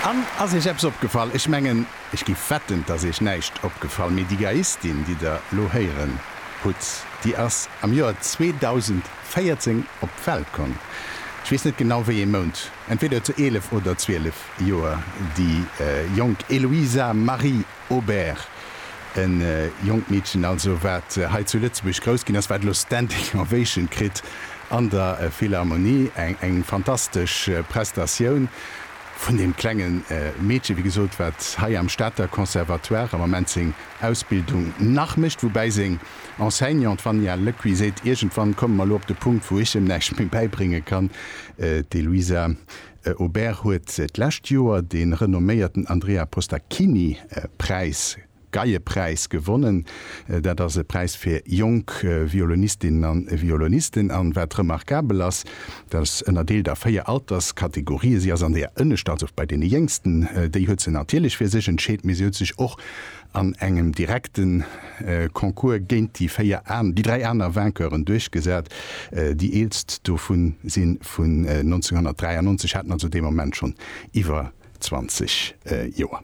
An, ass Iech eppes opgefall? Ech mengen, ech giff wetten, dass Iech näischt opgefall, mee déi Geiistin, déi Der elo héieren hutt, déi ass am Joer 2014 op d'Welt komm. Ech weess net genau, wéi ee Mount, entweder zu 11 oder 12 Joer déi jonk Eloisa Marie. Aubert, en jonkt Meedchen also, wat hei zu Lëtzebuerg grouss ginn ass, wat elo Standing Ovation kritt an der Philharmonie. Eng fantastesch Prestatioun vun deem klenge Meedchen, wéi gesot, wat hei am Stater Conservatoire am Ament seng Ausbildung nach mécht, woubäi seng Enseignante Vania Lecuit seet, Iergendwann komme mer elo op de Punkt, wou ech em näischt méi bäibrénge kann, d'Eloisa. E Aubert huet d'lescht Joer de renomméierten Andrea Postacchini Präis, Geiepräis, gewonnen. Dat ass e Präis fir jonk Violonistinnen a Violonisten. An wat remarkabel ass, dat ass ënnerdeelt a véier Alterskategorië. Si ass an deeër ënnescht, also bei deene Jéngsten. Déi huet se natierlech fir sech entscheet, mee si huet sech och an engem direkte Concours géint déi 4 an déi 3 aner Vainqueuren duerchgesat. Déi eelst dovun si vun 1993, haten also dee Moment schonn iwwer 20 Joer.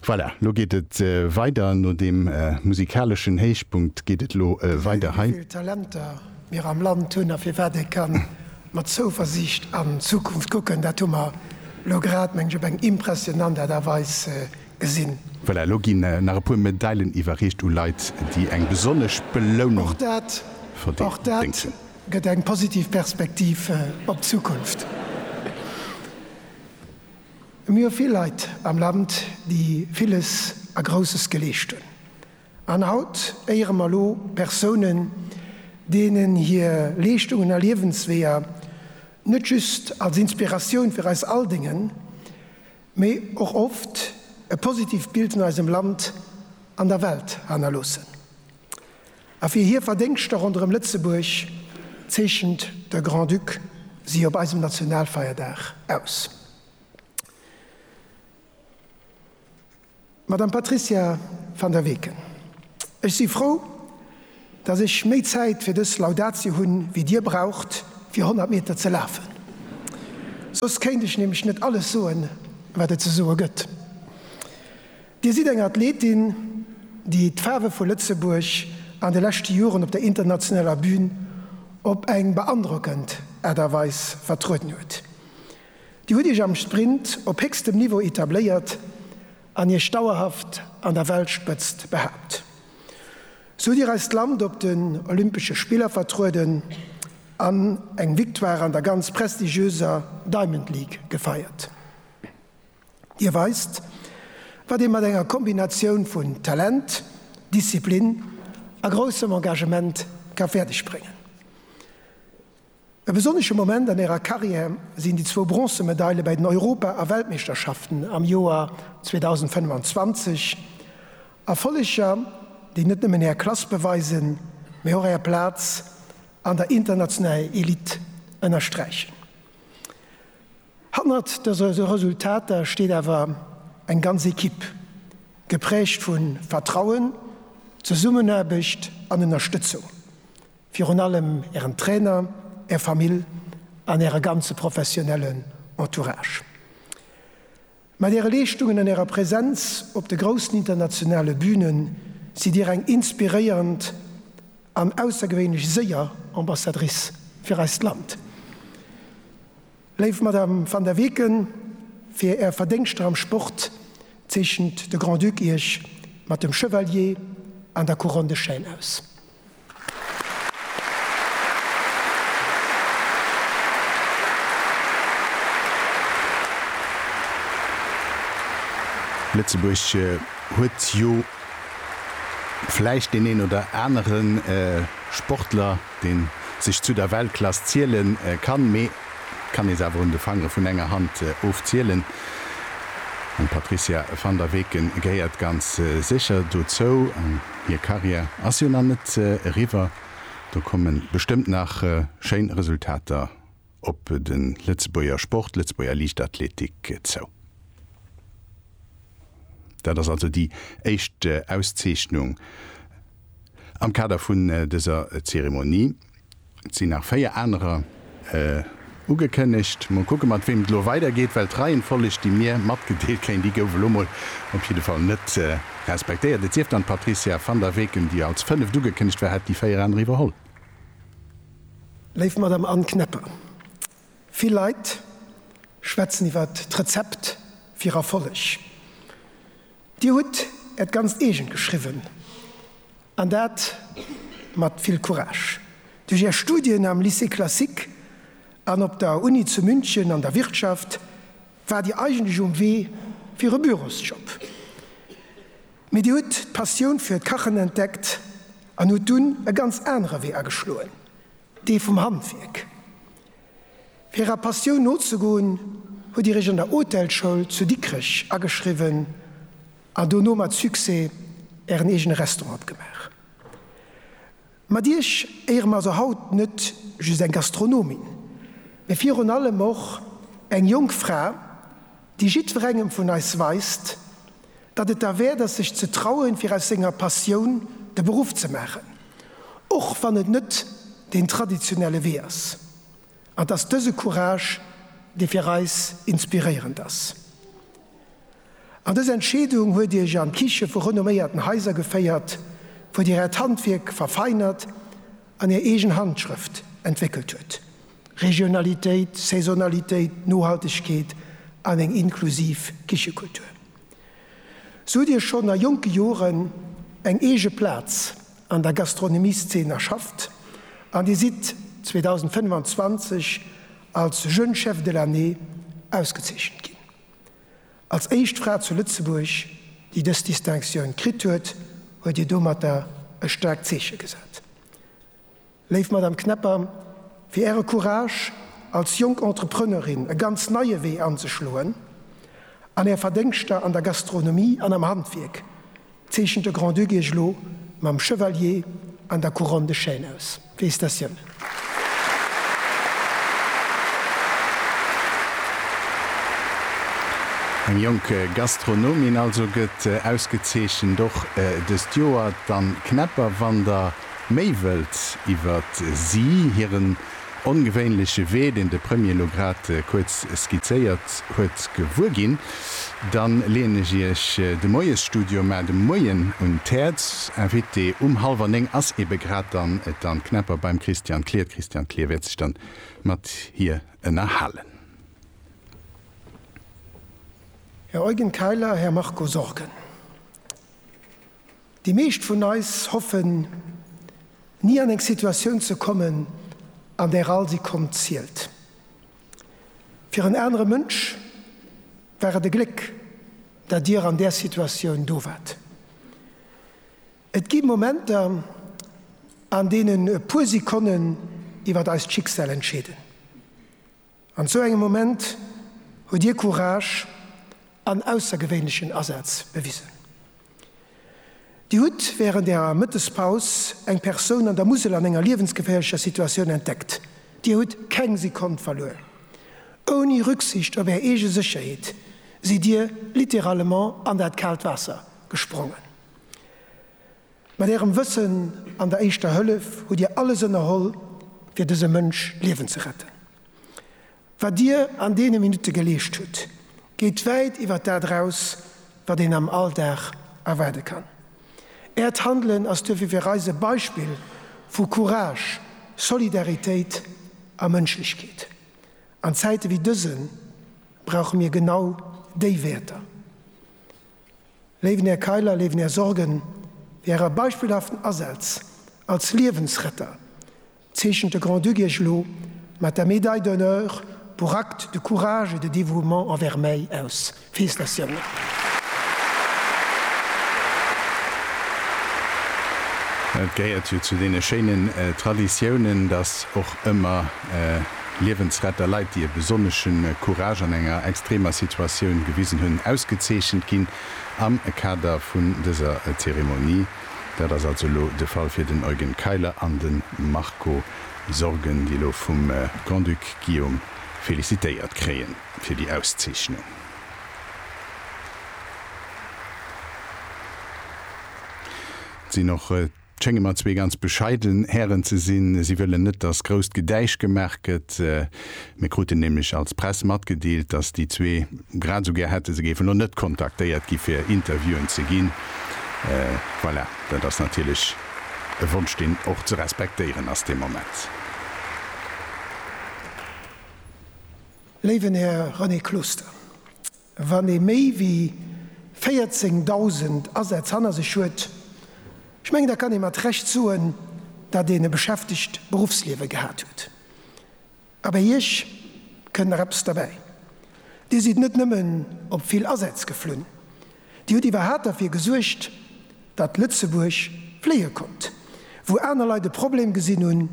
Voilà, lo geet et weider. No deem musikaleschen Héichpunkt geet et lo weider hei. Wéivill Talenter mir am Land hunn a firwat ee ka mat Zouversiicht an d'Zukunft kucken, dat hu mer lo grad, mengen ech, op eng impressionant Aart a Weis gesinn. Voilà, elo ginn nach e puer Medailen iwwerreecht u Leit, déi eng besonnesch Belounung verdéngt hunn. Gëtt eng positiv Perspektiv op d'Zukunft. Mir hu vill Leit am Land, déi villes a Grousses geleescht hunn. An haut éiere mer elo Persounen, deenen hir Leeschtungen a Liewensweeër net just als Inspiratioun fir eis all déngen, mee och oft e positiivt Bild vun eisem Land an der Welt hannerloossen. A fir hir Verdéngschter ronderëm Lëtzebuerg zeechent de Grand-Duc si op eisem Nationalfeierdag aus. Madame Patricia Van der Weken, ech si frou, datt ech méi Zäit fir dës Laudatio hunn, wéi Dir braucht, fir 100 Meter ze lafen. Soss kéint ech nämlech net alles soen, wat et ze soe gëtt. Dir sidd eng Athletin, déi d'Faarwe vu Lëtzebuerg an de leschte Joren op der internationaler Bün op eng beandrockend Aart a Weis vertrueden huet. Dir hutt Iech am Sprint op héchstem Niveau etabléiert an Iech dauerhaft an der Weltspëtzt behaapt. Sou hutt Dir eist Land op den Olympesche Spiller vertrueden an eng Victoire an der ganz prestigiöser Diamond League gefeiert. Dir weist, wat ee mat enger Kombinatioun vun Talent, Disziplin a groussem Engagement ka fäerdegbréngen. E besonnesche Moment an hirer Karriär sinn déi zwou Bronzemedaile bei den Europa a Weltmeeschterschaften am Joer 2025, Erfolleger, déi net nëmmen hir Klass beweisen, mee och hir Plaz an der internationaler Elite ënnersträichen. Hannert dëse Resultater steet awer eng ganz Ekipp, geprägt vu Vertrauen, Zesummenaarbecht an Ënnerstëtzung. Virun allem Ären Trainer, Är Famill an Äre ganze professionellen Entourage. Mat Äre Leeschtungen an Ärer Präsenz op de groussen internationale Büne sidd Dir eng inspiréierend an aussergewéinlech séier Ambassadrice fir eist Land. Léif Madame Van der Weken, fir Är Verdéngschter am Sport zeechent de Grand-Duc Iech mat dem Chevalier an der Couronne de Chêne aus. Lëtzebuerg huet jo vläicht deen een oder anere Sportler, dee sech zu der Weltklass ziele kann, mee et kann ee se awer un de Fangere vun enger Hand ofzielen. An d'Patrizia van der Weken gehéiert ganz sécher dozou. Hir Karriär ass jo nach net eriwwer. Do komme bestëmmt nach schéin Resultater op de Lëtzebuerger Sport, d'Lëtzebuerger Liichtathletik zou. Dat ass also déi éischt Auszeechnung am Kader vun dëser Zeremonie. Et sinn nach véier anerer ugekënnegt. Mol kucke mat weem et elo weidergeet, well d'Reihenfolleg, déi mir matgedeelt kéint gi, gouf elo mol op jidde Fall net respektéiert. Et sief dann, d'Patricia Van der Weken, déi als fënneft ugekënnegt war, hätt déi véier aner iwwerholl. Léif Madame Anne Kneppe, vill Leit schwätzen iwwer d'Rezept fir Erfolleg. Dir hutt Äert ganzt eegent geschriwwen. An dat mat vill Courage. Duerch Är Studien am Lycée classique an op der Uni zu München an der Wirtschaft waart Dir eigentlech um Wee fir e Bürosjob. Mee Dir hutt d'Passioun fir d'Kachen entdeckt an hutt dunn e ganz anere Wee ageschloen, dee vum Handwierk. Fir Ärer Passioun nozegoen, hutt Dir Iech an der Hotelschoul zu Dikrech ageschriwwen A dono mat Succès ären eegene Restaurant gemaach. Mat iech éiere mer also haut net just eng Gastronomin, mee virun allem och eng jonk Fra, déi jiddwerengem vun eis weist, datt et derwäert ass, sech ze trauen, fir aus senger Passioun de Beruff ze maachen, och wann et net deen traditionelle Wee ass. An 't ass dëse Courage, dee fir eis inspiréierend ass. An dës Entscheedung huet Dir Iech an d'Kiche vu renomméierten Haiser geféiert, wou Dir Äert Handwierk verfeinert an Är eegen Handschrëft entwéckelt huet. Regionalitéit, Saisonalitéit, Nohaltegkeet an eng inklusiv Kichekultur. Sou hutt Dir schonn a jonke Joren eng eege Plaz an der Gastronomieszeen erschafft an Dir sidd 2025 als Jeune Chef de l'année ausgezeechent ginn. Als éischt Fra zu Lëtzebuerg, déi dës Distinctioun kritt huet, huet Dir domatter e staarkt Zeeche gesat. Léif Madame Knepper, fir Äre Courage, als jonk Entrepreneurin e ganz neie Wee anzeschloen, an Är Verdéngschter an der Gastronomie an am Handwierk, Zeechent de Grand-Duc Iech elo mam Chevalier an der Couronne de Chêne aus. Félicitatiounen. Eng jonk Gastronomin also gëtt ausgezeechent, och dëst Joer d'Anne Knepper. Wann der méi wëllt iwwert si, hiren ongewéinleche Wee, deen de Premier elo grad kuerz skizzéiert huet, gewuer ginn, da leeën ech Iech de Moiesstudio mar de Moien un d'Häerz. Invité um hallwer néng ass ebe grad dann d'Anne Knepper beim Christian Klier. D'Christiane Klier wäert sech dann mat hir ënnerhalen. Här Eugen Keiler, Här Marco Sorgen. Déi meescht vun eis hoffen, ni an eng Situatioun ze kommen, an där all Sekonn zielt. Fir en anere Mënsch war et e Gléck, datt Dir an där Situatioun do waart. Et gi Momenter, an deenen e puer Sekonnen iwwer eist Schicksal entscheeden. An esou engem Moment hutt Dir Courage an aussergewéinlechen Asaz bewisen. Dir hutt wärend Ärer Mëttespaus eng Persoun an der Musel an enger liewensgeféierlecher Situatioun entdeckt. Dir hutt keng Sekonn verluer. Ouni Rücksicht op Är eege Sécherheet sidd Dir littéralement an dat kaalt Waasser gesprongen. Mat Ärem Wëssen an der Éischter Hëllef hutt Dir alles ënnerholl, fir dësem Mënsch d'Liewen ze retten. Wat Dir an deene Minutte geleescht hutt, geet wäit iwwer dat eraus, wat een am Alldag erwaarde kann. Äert Handelen ass duerfir fir eis e Beispill vu Courage, Solidaritéit a Mënschlechkeet. An Zäite wéi dësen brauche mir genau déi Wäerter. Léiwen Här Kayler, léiwen Här Sorgen, fir Äre beispillhaften Asaz als Liewensretter zeechent de Grand-Duc Iech elo mat der Médaille d'honneur pour actes de courage et de dévouement envers mäi aus. Félicitatiounen! Et gehéiert jo zu deene schéinen Traditiounen, datt och ëmmer. Liewensretter, Leit, déi e besonnesche Courage an enger extremer Situatioun gewisen hunn, ausgezeechent ginn am Kader vun dëser Zeremonie. Dat ass also elo de Fall fir den Eugen Keiler an de Marco Sorgen, déi elo vum Grand-Duc Guillaume felicitéiert kréie fir déi Auszeechnung. Et sinn och. Et schénge mer zwee ganz bescheiden Hären ze sinn. Si wëllen net, dass grousst Gedäisch gemaach gëtt. Mir kruten nämlech als Press matgedeelt, dass déi zwee grad esou gär hätte, se géifen elo net kontaktéiert gi fir Interviewen ze ginn. Voilà, dat ass natierlech e Wonsch, deen och ze respektéieren ass dee Moment. Léiwen Här René Closter, Wann ee méi wéi 14.000 Asätz hanner sech huet, ech mengen, da kann ee mat Recht soen, datt een e beschäftegt Beruffsliewe gehat huet. A bei Iech kënnt nach eppes derbäi, Dir sidd net nëmmen op vill Asätz geflunn, Dir hutt iwwerhat derfir gesuergt, datt Lëtzebuerg fléie konnt. Wou aner Leit e Problem gesinn hunn,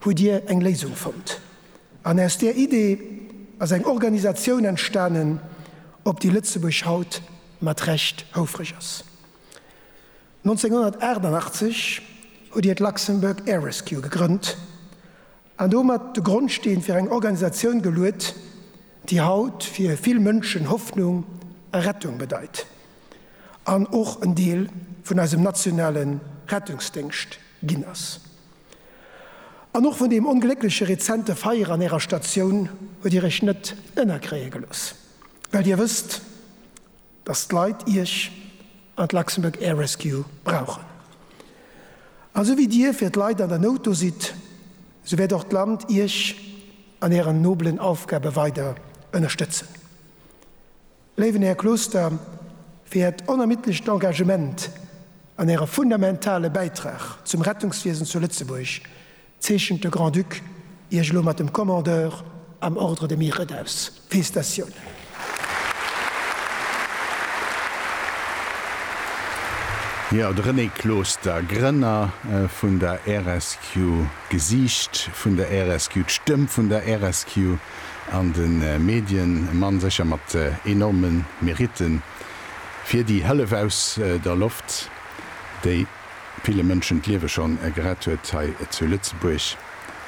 hutt Dir eng Léisung fonnt. An aus där Idee ass eng Organisatioun entstanen, op déi Lëtzebuerg haut mat Recht houfreg ass. 1988 hutt Dir d'Luxembourg Air Rescue gegrënnt an domat de Grondsteen fir eng Organisatioun geluet, déi haut fir vill Mënschen Hoffnung a Rettung bedeit an och en Deel vun eisem nationale Rettungsdéngscht ginn ass. An och vun deem ongléckleche rezente Feier an Ärer Statioun huet Dir Iech net ënnerkréie gelooss, well Dir wësst, datt d'Leit Iech an d'Luxembourg Air Rescue brauchen. A sou wéi Dir fir d'Leit an der Nout do sidd, sou wäert och d'Land Iech an Ären nobelen Aufgabe weider ënnerstëtzen. Léiwen Här Closter, fir Äert onermiddlecht Engagement an Äre fundamentale Bäitrag zum Rettungswiesen zu Lëtzebuerg zeechent de Grand-Duc Iech elo mat dem Commandeur am Ordre de Mérite aus. Félicitatiounen! Jo, de René Closter, Grënner vun der RSQ, d'Gesiicht vun der RSQ, d'Stëmm vun der RSQ. an de Medien e Mann sécher mat enorme Mérite fir déi Hëllef aus der Loft, déi ville Mënschen d'Liewe schonn gerett huet hei zu Lëtzebuerg.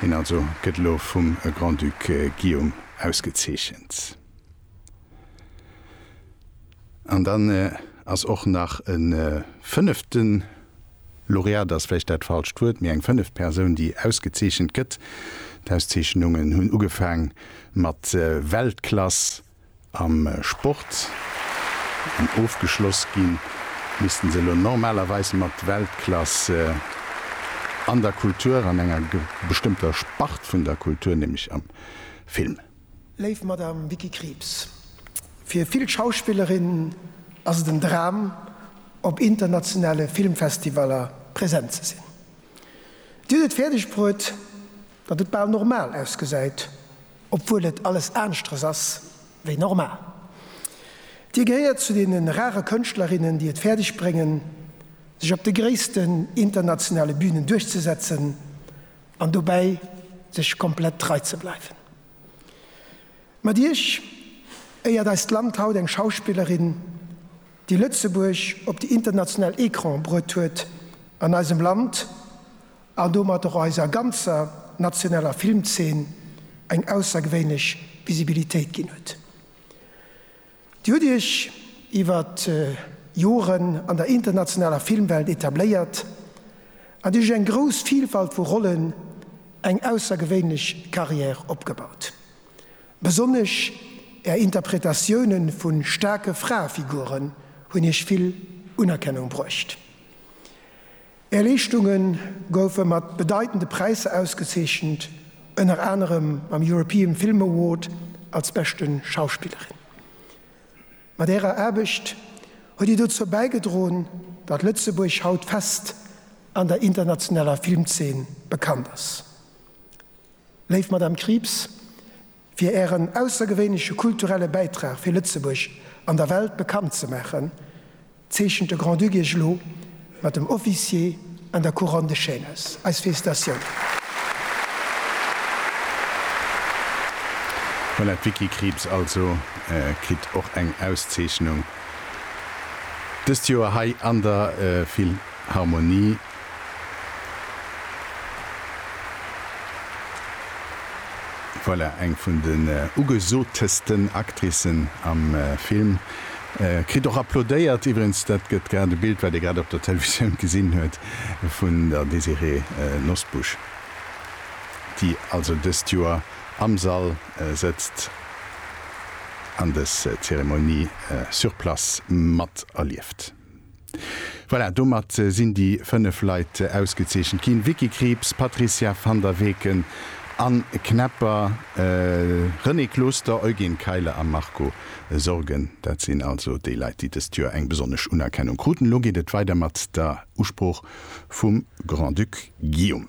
Hien also gëtt elo vum Grand-Duc Guillaume ausgezeechent. An dann ass och nach e fënneften, Laureat ass vläicht dat falscht Wuert, mee eng fënneft Persoun, déi ausgezeechent gëtt. D'Auszeechnungen hunn ugefaang mat Weltklass am Sport an ofgeschloss gi missten se elo normalerweis mat Weltklass an der Kultur, an enger bestëmmter Spart vun der Kultur, nämlech am Film. Léif Madame Vicky Krieps, fir vill Schauspillerinnen ass et en Dram, op internationale Filmfestivaller präsent ze sinn. Dir hutt et fäerdeg bruet, datt et bal normal ausgesäit, obwuel et alles aanschteres ass wéi normal. Dir gehéiert zu deene rare Kënschtlerinnen, déi et fäerdeg bréngen, sech op de gréissten internationale Bünen duerchzesetzen an dobäi sech komplett trei ze bleiwen. Mat Iech éiert eist Land haut eng Schauspillerin, déi Lëtzebuerg op déi international Ecrane bruet huet an eisem Land an domat och eiser ganzer nationaler Filmzeen eng aussergewéinlech Visibilitéit ginn huet. Dir hutt Iech iwwer Joren an der internationaler Filmwelt etabléiert an Dir hutt Iech eng grouss Vilfalt vu Rollen, eng aussergewéinlech Carrière opgebaut. Besonnesch Är Interpretatioune vu staarke Fraefiguren hunn Iech vill Unerkennung bruecht. Är Leeschtunge goufe mat bedeitende Präisser ausgezeechent, ënner anerem mam European Film Award als beschte Schauspillerin. Mat Ärer Aarbecht huet Dir dozou bäigedroen, datt Lëtzebuerg haut fest an der internationaler Filmzeen bekannt ass. Léif Madame Krieps, fir Ären aussergewéinleche kulturelle Bäitrag fir Lëtzebuerg an der Welt bekannt ze maachen, zeechent de Grand-Duc Iech elo mat dem Officier an der Couronne de Chêne aus. Eis Félicitatiounen! Voilà, d'Vicky Krieps also kritt och eng Auszeechnung dëst Joer hei an der Philharmonie. Voilà, eng vun den ugesotesten Actricen am Film kritt och applaudéiert. Iwwregens, dat gëtt grad e Bild, wat ee grad op der Televisioun gesinn huet, vun der Désirée Nosbusch, déi also dëst Joer am Sall sëtzt an dës Zeremonie sur place mat erlieft. Voilà, domat sinn déi 5 Leit ausgezeechent ginn, Vicky Krieps, Patricia Van der Weken, Anne Knepper, Renée Closter, Eugen Keiler a Marco Sorgen. Dat sinn also déi Leit, déi dëst Joer eng besonnesch Unerkennung kruten. Elo geet et weider mat der Usprooch vum Grand-Duc Guillaume.